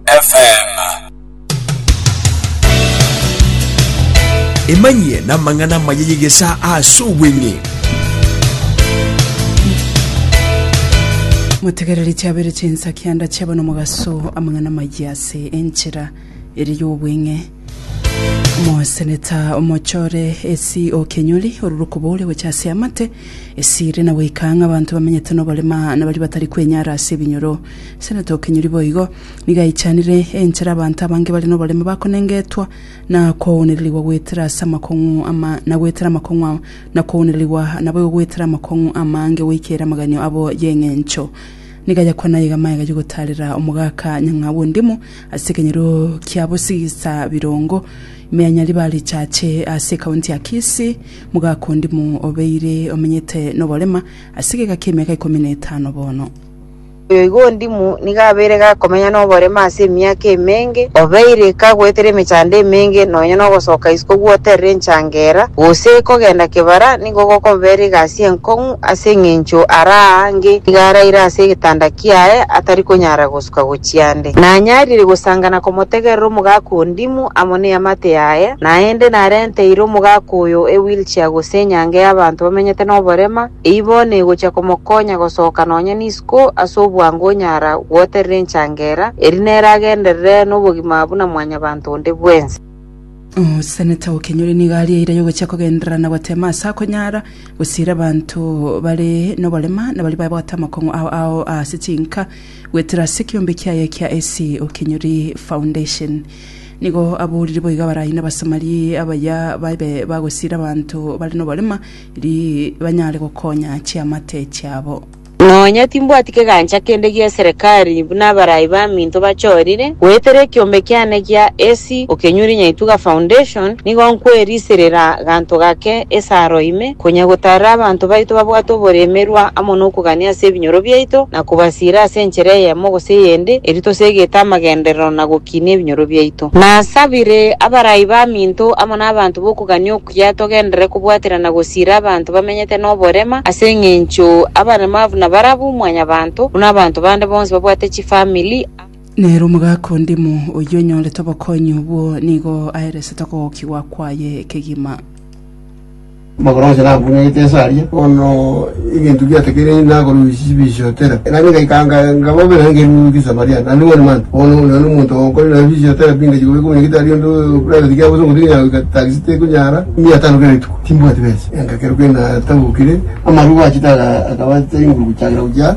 FM. emanyie namang'ana amaya y'egesa ase obweng'e motegereri chiabere chinsa kianda chiaba nomogaso amang'ana maya ase enchera ere y'obweng'e Omoseneta omochore esi o Kenyori orure okobooria gocha ase amate esire na goika ng'a abanto bamenyete noborema na baria batari kwenyara ase ebinyoro. Seneta o Kenyori boigo nigo aichanire enchera abanto abange bare noborema bakonengetwa na kounererigwa goetera ase amakong'u ama na goetera amakong'u a na kounererigwa naboigo goetera amakong'u amange goikera amaganio abo y'eng'encho. Nigo ayakwana aye iga amaiga y'ogotaarera omogaka nyang'au ondimo Ase ekenyoro kia bosigisa birongo, Imeanyari ba Richache ase ekaunti ya Kisii, Mogaka Ondimo obeire omenyete noborema ase egeka kia emiaka ikomi na etano bono. Igo Ondimo nigo abeire gakomenya noborema ase emiaka emenge, obeire kagoetera emechando emenge nonya nogosoka isiko gwoterera enchangera, gose kogenda kebara nigo gokobera egasi enkong'u ase eng'encho araa ange nigo araire ase egetanda kiaye atari konyara gosuka gochia ande. ere. Nanyarire gosanga na komotegerera omogaka o ndimu amo neamate yaye, naende narenteire omogaka oyo ewheelchair gose enyange y'abanto bamenyete noborema, eyio bono egochia komokonya gosoka nonya nisiko ase obwango onyara gwoterera enchangera, erio nere agenderere nobogima buna mwanyabanto onde bwensi. Omoseneta o Kenyori nigo aria eira yogochia kogenderera na goteema ase akonyara gosiira abanto bare noborema na baria baye bagotee amakong'u ao ao ase chinka. Goetera ase ekeombe kiaye kia Esi Okenyori Foundation. Nigo aboriri boiga barai nabasamari abaya babe bagosiira abanto bare noborema eri banyare gokonya chiamate chiabo. Nonya timbwati kegancha kende gia eserekari buna abarai baminto bachorire, goetera ekeombe kiane gia Esi Okenyori Nyaituga Foundation nigo nkweriserera ganto gake esaro ime, Konya gotaara abanto baito babwate oboremerwa amo nokogania ase ebinyoro biaito, na kobasiira ase enchera eyemo gose eyende, erio tosegete amagenderero na gokinia ebinyoro biaito. Nasabire abarai baminto amo nabanto bokogania okuya togenderere kobwaterana gosiira abanto bamenyete noborema, ase engencho abaremavu nabarabwo mwanyabanto, buna abanto bande bonsi babwate chifamiri. Nere omogaka ondimo oyio onyorete obokonyi obwo nigo aeresete okogokigwa kwaye ekegima. Magoranche nabung'aite inse aria, bono ebinto biatekereiri nakorusia chibisio tera. Naki ngaika nkababera nkerurukia Samaria, naende bono mantwe, bono onde nonye omonto onkore naende chibisio tera bingachia kobekwa buna gitari onde private kiaye gose omonto onya goika taxi tekonyara mia tano kera rituko, timbwati besa. Engakeruka natabokire, amarubo achete akaba tari nguru gochakera gochia.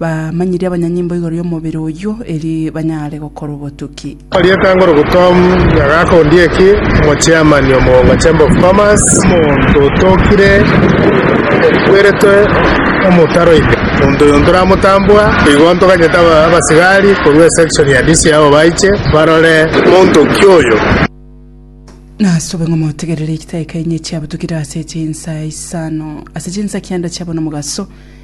Bamanyirie abanyanyimbo igoro y'omobere oyio, eri banyare gokora obotuki. Rieta ngoro Gutom Nyagaka Ondieki, Omochairman o Mugonga Chamber of Commerce, omonto otokire, okweretwe omotaro ime, omonto oyo ntoramotambua, igo ntoganyete aba- abasigari korwa esection ya Disi abo baiche barore omonto ki oyo. Nasobe ng'a motegerere egitaika enye chiabutukire ase chinsa isano, ase chinsa kianda chiabo nomogaso,